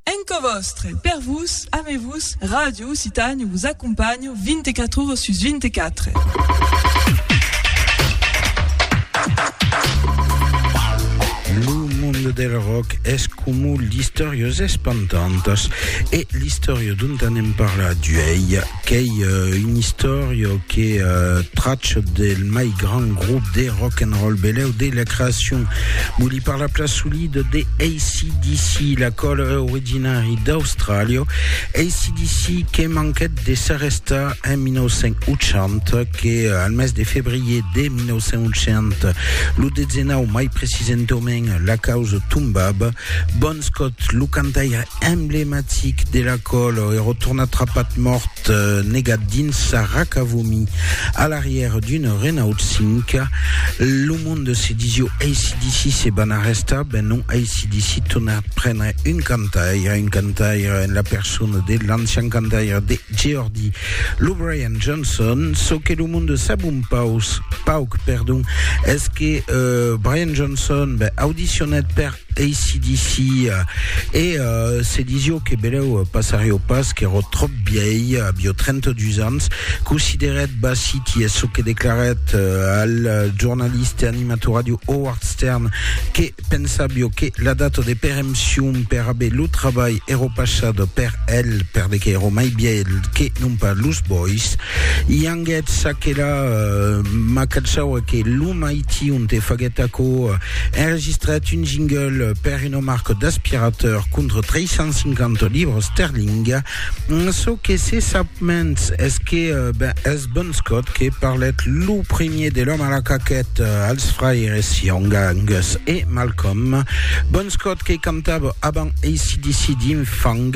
En cò vòstre, per vos, ame vos, Ràdio Occitània vos acompanha 24 ores sus 24. Lo monde del ròck es coma l'istòria es espantantas e l'istòria dont anem parlar d'uèi Qu'ei un istòrio que trach del mai grand grop de rock and roll beleu de la creacion. Voli parlar pla solit de ACDC, la qual è originari d'Austràlia. ACDC que manquèt de s'arrestar en 1980, que al mes de febrier de 1980, lo 19 mai precisentament, la causa tombava. Bon Scott, lo cantaire emblematic de la còlo e rotona trapat mòrt negat dins sa raca vomi a l'arrièr d'una Renault 5. Lo monde se disió ACDC se van arrestar, ben non ACDC torna prendre un cantaire, un cantaire en la persona de l'ancian cantaire de Geordi, lo Brian Johnson. Çò que lo monde sap un paus, pauc, perdon, es que euh, Brian Johnson ben, audicionèt per ACDC e se disio que beleu passarió pas qu'èro tròp bièi, avió 32 ans, considerèt Bassiti es çò que declarèt al jornalista e animator ràdio Howard Stern que pensavió que la data de perempcion per aver lo trabalh èro passat per el perde qu'èro mai bièl que non pas los bois. I anguèt ça que la, ma caçau e que lo mai Tion te faguèt aquò, enregistrèt un jingle per una marca d'aspirateur contra 350 libres sterling. Çò que se sap mens es que ben, es Bon Scott que parlèt lo premier de l'òme a la caquèt als fraires Young, Angus e Malcolm. Bon Scott que cantava avant ACDC dins Fang,